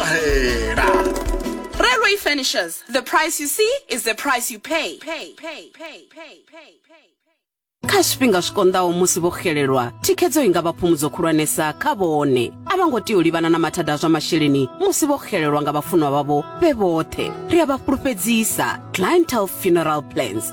ṱahela Railway Furnishers, the price you see is the price you pay. pay, pay, pay, pay, pay, pay. kha zwifhinga zwi konḓaho musi vho xelelwa thikhedzo i nga vha phumudzo khulwanesa kha vhone a vha ngo tea u livhana na mathada a zwa masheleni musi vho xelelwa nga vhafunwa vhavho vhe vhoṱhe ri a vha fhulufhedzisa clientele funeral plans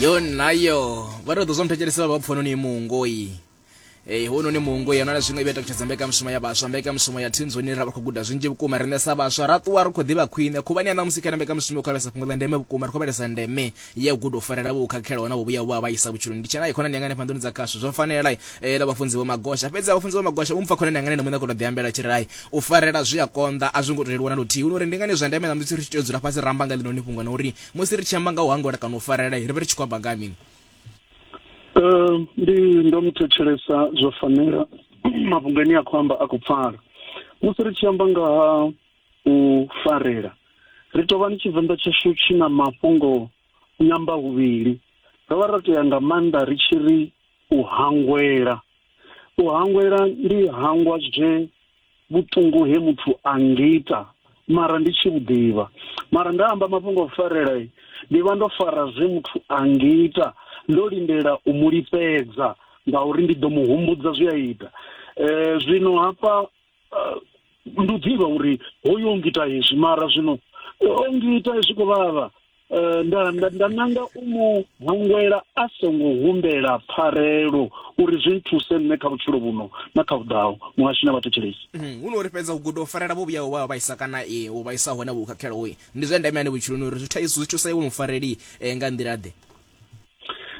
yo nayo vha tou ḓo zwo mthetshelesa vha pfhono ni muungoi ee eh, hono ni muungo ya nala zwiṅwe i vha takutshedza mbekanyamushumo ya vhaswa mbekanyamushumo ya thinzoni ra vha khou guda zwinzhi vhukuma riṋe sa vhaswa ra ṱuwa ri khou ḓivha khwine khuvhani ya ṋamusi kana mbekanyamushumo yo khavhesa fhungo ḽa ndeme vhukuma ri khou vhalesa ndeme ya u guda u farela vho khakhelaho na vho vhuya vha vhaisa vhutshiloni ndi tshena khonani yanga hanefha nḓuni dza khasho zwo fanela eh, la vhafunzi vho magosha fhedzi vhafunzi vho magosha vho mpfa khonani yanga nene muṋe kho to ḓi ambela tshi rai u farela zwi a konḓa a zwi ngo leluwa na luthihi uri ndi ngani zwa ndeme na musi ri tshi tea u dzula fhasi ra amba nga ḽino ni fhungo na uri musi ri tshi amba nga u hangola kana u farela ri vhe ri tshi khou amba nga mini eh, ndi ndo muthetshelesa zwo fanela mafhungo ane a khou amba a khou pfala musi ri tshi amba nga ha u farela. Ri tou vha ni Tshivenḓa tshashu tshi na mafhungo nyamba huvhili. Ro vha ro tea nga maanḓa ri tshi ri u hangwela. U hangwela ndi hangwa zwe vhuṱungu he muthu a ngita mara ndi tshi vhuḓivha mara nda amba mafhungo a farela ndi vha ndo fara zwe muthu a ngita ndo lindela u mu lifhedza ngauri ndi ḓo mu humbudza zwi a ita um zwino hafha ndi u ḓivha uri hoyu o ngita hezwi mara zwino o ngita zwi khou vhavha um nda nda nda nanga u mu hangwela a songo humbela pfarelo uri zwi nthuse nṋe kha vhutshilo vhuno na kha vhuḓaho muhashu na vhathetshelesi hu no uri fhedza u guda u farela vho vhuyaho vha vhaisa kana e u vhaisa hone vho khakhelaho ndi zwa ndeme ane vhutshiloni uri zwi thaidzo zwi thusa iwe mufareli nga nḓila ḓe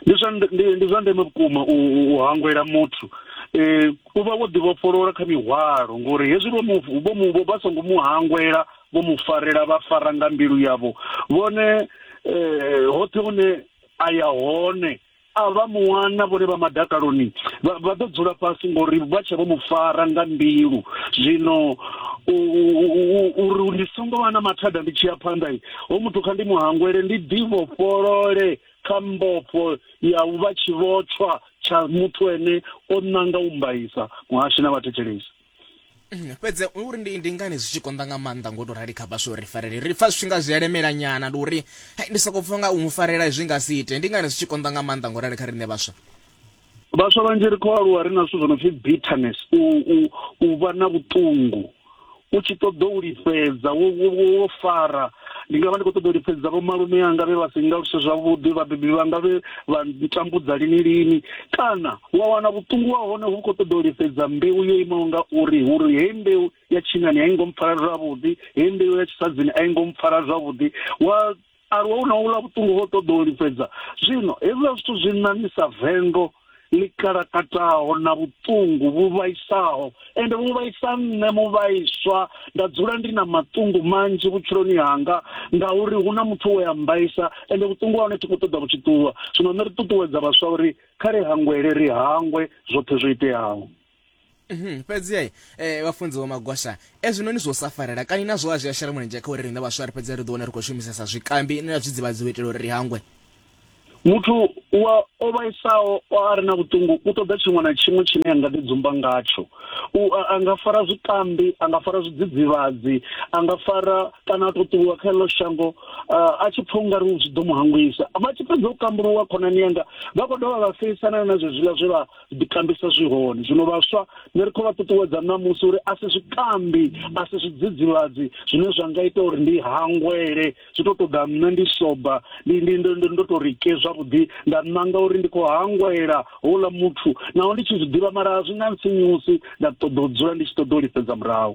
ndi zwa ndi zwa ndeme vhukuma u hangwela muthu eh u vha wo ḓivhofholola kha mihwalo ngori hezwi vho mu vho mu vha songo mu hangwela vho mu farela vha fara nga mbilu yavho vhone eh hoṱhe hune a ya hone a vha muwana vhone vha madakaloni vha ḓo dzula fhasi ngori vha tshe vho mu fara nga mbilu zwino uri ndi songo vha na mathada ndi tshi ya phanḓa Hoyu muthu kha ndi mu hangwele, ndi ḓivhofholole kha mbofho ya u vha tshivhotshwa tsha muthu ene o nanga u mbaisa, muhashi na vhathetshelesi. Mm, fhedzi u ri ndi, ndi ngani zwi tshi konḓa nga maanḓa ngo tou rali kha vhaswa uri farele? Ri pfa zwi tshi nga zwi elemela nyana, ndi uri ndi sokou pfa nga u mu farela zwi nga si ite. Ndi ngani zwi tshi konḓa nga maanḓa ngo rali kha riṋe vhaswa? vhaswa vhanzhi ri khou aluwa ri na zwithu zwo no pfi bitterness u u u vha na vhuṱungu u tshi ṱoḓa u lifhedza wo wo fara ndi nga vha ndi khou ṱoḓa u lifhedza vho malume anga vhe vha si nga luse zwavhuḓi vhabebi vhanga vhe vha ntambudza lini lini kana wa wana vhuṱungu wa hone hu khou ṱoḓa u lifhedza mbeu yo imaho nga uri uri hei mbeu ya tshinani a i ngo mpfara zwavhuḓi hei mbeu ya tshisadzini a i ngo mpfara zwavhuḓi wa alwa hu na u ḽa vhuṱungu ho ṱoḓa u lifhedza zwino hezwiḽa zwithu zwi ṋaṋisa vendo ḽi kalakataho na vhuṱungu vhu vhaisaho ende vhu vhaisa nṋe mu vhaiswa nda dzula ndi na maṱungu manzhi vhutshiloni hanga ngauri hu na muthu we a mbaisa ende vhuṱungu ha hone thi khou ṱoḓa vhutshi ṱuwa zwino nṋe ri ṱuṱuwedza vhaswa uri kha ri hangwele ri hangwe zwoṱhe zwo iteaho Mhm, fhedzi ai eh, vhafunzi vho magosha ezwinoni zwo sa farela kani nazwo a zwi a shela mulenzhe kha uri riṋe vhaswa ri fhedze ri ḓo wana ri khou shumisesa zwikambi na zwidzivhadzi u itela uri ri hangwe muthu wa o vhaisaho a re na vhuṱungu u ṱoḓa tshiṅwe na tshiṅwe tshine a nga ḓi dzumba ngatsho a nga fara zwikambi a nga fara zwidzidzivhadzi a nga fara kana a tou ṱuwa kha ḽo shango a tshi pfha ungari zwi ḓo mu hangwisa vha tshi fhedza u kambuluwa khonani yanga vha khou dovha vha feisana na zwezwiḽa zwe vha ḓikambisa zwi hone zwino vhaswa ni ri khou vha ṱuṱuwedza ṋamusi uri a si zwikambi a si zwidzidzivhadzi zwine zwa nga ita uri ndi hangwele zwi tou ṱoḓa nṋe ndi soba ndi ndi ndo ndo ndo tou ri ke zwavhuḓi nda ṋanga uri ndi khou hangwela houḽa muthu naho ndi tshi zwi ḓivha mara a zwi nga ntsinyusi nda ṱoḓa u dzula ndi tshi ṱoḓa u lifhedza murahu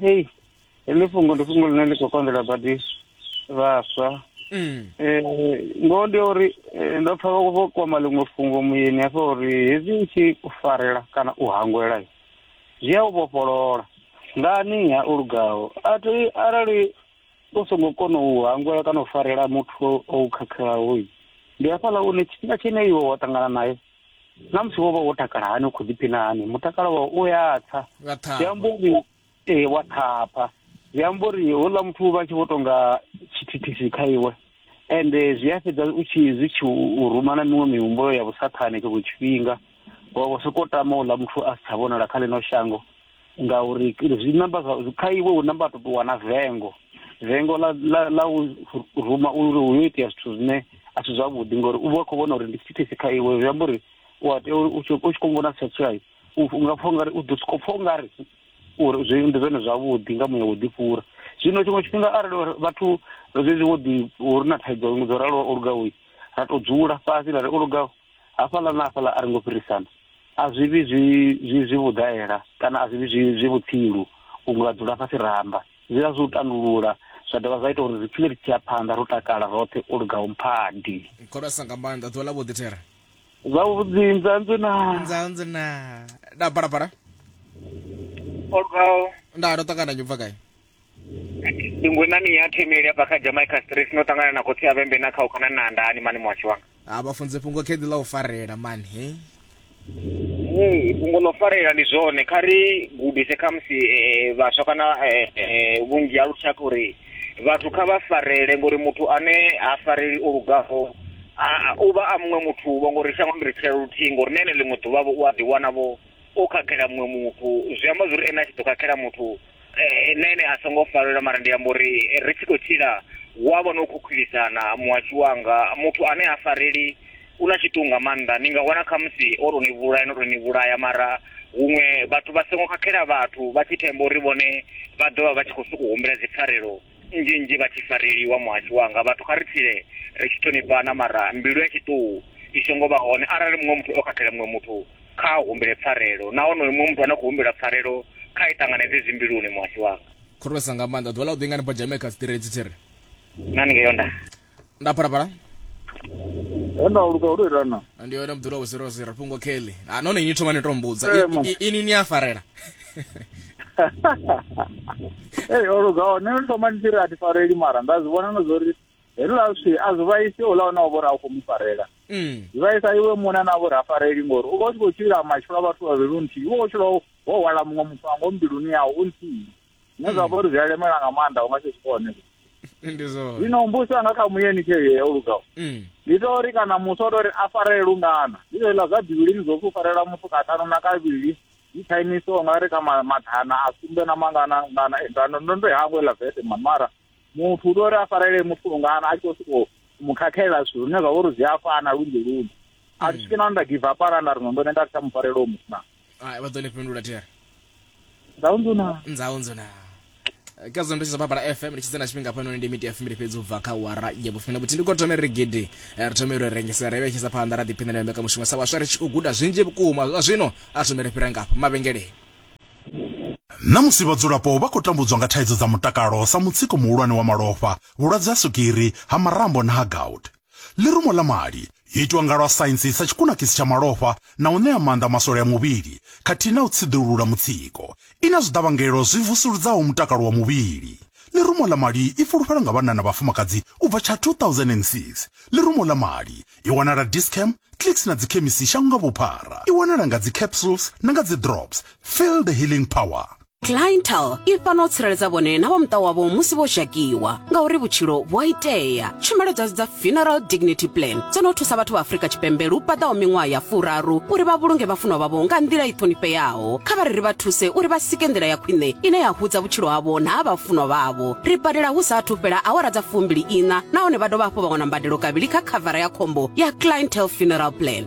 hei heḽi fhungo ndi fhungo ḽine ḽi khou konḓela badi vhaswa um ngoho ndi ya uri eh, ndo pfa vha vho kwama ḽiṅwe fhungo muyeni hafha uri hezwi u tshi u farela kana u hangwela i, zwi a u vhofholola ngani ha u lugaho a thi arali u songo kona u hangwela kana u farela muthu o u khakhelaho i, ndi hafhaḽa une tshifhinga tshine iwe wa ṱangana naye na musi wo vha wo takala hani u khou ḓiphina hani mutakalo wa u ya tsa zwi amba uri ee wa thapha zwi amba uri houḽa muthu vha tshi vho tonga tshithithisi kha iwe ende zwi a fhedza u tshi zwi tshi u ruma na miṅwe mihumbulo ya vhusathane tshiṅwe tshifhinga wa vho sokou tama uḽa muthu a si tsha vhonala kha ḽino shango ngauri zwi namba kha iwe hu namba tou wana vengo vengo ḽa ḽa u ruma uri hu yo itea zwithu zwine a si zwavhuḓi ngori u vha khou vhona uri ndi thithisi kha iwe zwi amba uri u a tea uri u tshi khou vhona setsai u nga pfha ungari u ḓo sokou pfha ungari uri zwi ndi zwone zwavhuḓi nga muya wo ḓifhura zwino tshiṅwe tshifhinga arali vhathu zwezwi wo ḓi uri na thaidzo dzo raloho o lugaho ra tou dzula fhasi ra ri o lugaho hafhaḽa na hafhaḽa a ri ngo fhirisana a zwi vhi zwi zwi zwi vhudaela kana a zwi vhi zwi zwi vhutsilu vhuṅwe vha dzula fhasi ra amba zwi vha zwi u tandulula zwa dovha zwa ita uri ri tshile ri tshi ya phanḓa ro takala roṱhe u lugaho mphadi khorasa nga maanḓa ḓuvha ḽa vhuḓi thera zwavhuḓi nzanzwe na nzanzwe na da balabala o lugaho nda ndo ṱangana nyubva gai ndi ngwenani ya themeli ya baka jamaica stress no tangana na khotsi ya vhembe na kha u kana na ndani mani mwashi wanga ha vha funze fhungo kheḓi ḽa u farela mani he ee fhungo ḽo farela ndi zwone kha ri gudise khamusi eh, vhaswa kana eh, eh, vhunzhi ha lushaka uri vhathu kha vha farele ngori muthu ane ha fareli o lugaho a- a- u vha a muṅwe muthu vho ngori shango ndi ri tshila luthihi ngori na ene ḽiṅwe ḓuvha vho u a ḓiwana vho o khakhela muṅwe muthu zwi amba zwori ene a tshi ḓo khakhela muthu eh, nṋe ene a songo falela mara ndi amba uri eh, ri tshi khou tshila hu a vha no khukhulisana muhashu wanga muthu ane a fareli u na tshiṱuhu nga maanḓa ni nga wana khamusi o tou ni vhulaya no tou ni vhulaya mara huṅwe vhathu vha songo khakhela vhathu vha tshi themba uri vhone vha ḓo vha vha tshi khou sokou humbela dzipfarelo nnzhi nnzhi vha tshi fareliwa muhasho wanga vhathu kha ri tshile ri tshi ṱhonifhana mara mbilu ya tshiṱuhu i songo vha hone arali muṅwe muthu o khakhela muṅwe muthu kha humbele pfarelo na honoyo muṅwe muthu ane khou humbela pfarelo kha i ṱanganedze zwimbiluni muhasho wanga khorwesa nga maanḓa ḓuvha ḽa u ḓingani bajameka tsiṱiredzi tshi ri nani ngeyo nda nda phalaphala hona luka uri irana ndi yone mdula wo 00 fhungo kelly ah none ni thoma ni to mbudza Eh, I- ma. i- ini ni a farela ei oluka one ni thoma ni tiri a ti fareli mara nda zwi vhona no zwo ri heliḽa zwi a zwi vhaisi ola ona o vhori a u khou mu farela mm zwi vhaisa iwe muṋe na vhori a fareli ngori u vha u tshi khou tshila matshilo a vhathu vhavhili u nthihi u vha u tshila wo hwala muṅwe mufango mbiluni yau u nthihi zwine zwa vha uri zwi a lemela nga maanḓa u nga si zwikone ndi zwone zwino mbusi anga kha muyeni tshee o lugaho Mm. ndi to uri kana musi o to ri a farele lungana ndi zwo iḽa zwa bivhilini zwo pfi u farela muthu katano na kavhili ndi chinese o nga ri ka ma- mathana a sumbe na mangana ngana ngana ndo ndo i hangwe ḽa vese mani mara muthu u to uri a farele muthu lungana a tshi khou sokou mu khakhela zwithu zwine zwa vha uri zwi a fana lunzhi lunzhi a thi swiki na nda give up arali nda ri no ndo ne nda ri tsha mu farela u muthu na Ai, vha ḓo ni fhindula tea. Nzau nzuna. Nzau nzuna. Ka zwo ndo tshi baba FM ndi tshi tsena tshifhinga hafhanoni ndi miti ya fumbili fhedzi u bva kha wara ya vhufumi vhuthihi ndi khou thoma ri gidi eh, ri thome ri rengisa ri vhetshisa phanḓa ra ḓiphinela ya mbekanyamushumo sa vhaswa ri tshi khou guda zwinzhi vhukuma zwa zwino a thome ri fhira ngafho mavhengeleni Namusi vhadzulapo vha khou tambudzwa nga thaidzo dza mutakalo sa mutsiko muhulwane wa malofha, vhulwadze ha swigiri, ha marambo na ha gout. Ḽirumo ḽa mali yo itwa nga lwa saintsi sa tshikunakisi tsha malofha na u ṋea maanḓa maswole a muvhili khathihi na u tsiḓulula mutsiko. I na zwiḓavhangelo zwi vusuludzaho mutakalo wa muvhili. Ḽirumo ḽa mali i fulufhelwa nga vhanna na vhafumakadzi u bva tsha 2006. Ḽirumo ḽa mali i wanala Dis-Chem, Clicks na dzikhemisi shango nga vhuphara. I wanala nga dzi capsules na nga dzi drops. Feel the healing power! cliental i fana u tsireledza vhone na vha muṱa wavho musi vho zhakiwa ngauri vhutshilo vhu a itea tshumelo dzashu dza funeral dignity plan dzo no thusa vhathu vha afrika tshipembe lu paḓaho miṅwaha ya furaru uri vha vhulunge vhafunwa vhavho nga nḓila i ṱhonifheaho kha vha ri ri vha thuse uri vha sike nḓila ya khwine ine ya hudza vhutshilo havho na ha vhafunwa vhavho ri badela hu sa athu fhela awara dza fumbili iṋa nahone vha dovha hafhu vha wana mbadelo kavhili kha khavara ya khombo ya cliental funeral plan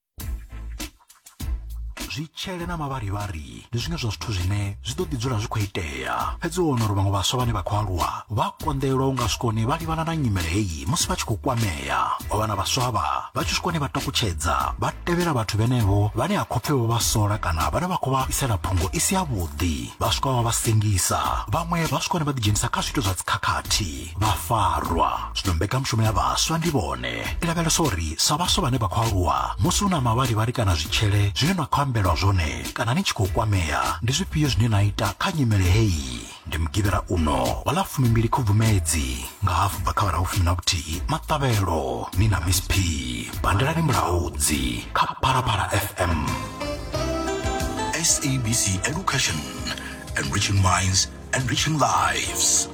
zwitshele na mavharivhari ndi zwiṅwe zwa zwithu zwine zwi ḓo ḓi dzula zwi khou itea fhedzi u wana uri vhaṅwe vhaswa vhane vha khou aluwa vha konḓelwa u nga swikoni vha livhana na nyimele heyi musi vha tshi khou kwamea wa wana vhaswa vha vha tshi swikoni vha takutshedza vha tevhela vhathu vhenevho vhane ha khopfe vho vha sola kana vhane vha khou vha isela phungo i si yavhuḓi vha swika vha vha sengisa vhaṅwe vha swikoni vha ḓidzhenisa kha zwiito zwa dzikhakhathi vha farwa zwino mbekanyamushumo ya vhaswa ndi vhone i lavhelesa uri sa vhaswa vhane vha khou aluwa musi hu na mavharivhari kana zwitshele zwine na khou ambelwa zwone kana ni tshi khou kwamea ndi zwifhio zwine na ita kha nyimele heyi ndi mugivhela uno wa ḽa fumimbili khubvumedzi nga hafu bva kha vhara vhufumi na vhuthihi maṱavhelo ni na miss p bandelani mulaudzi kha phalaphala fm SABC Education, enriching minds, enriching lives.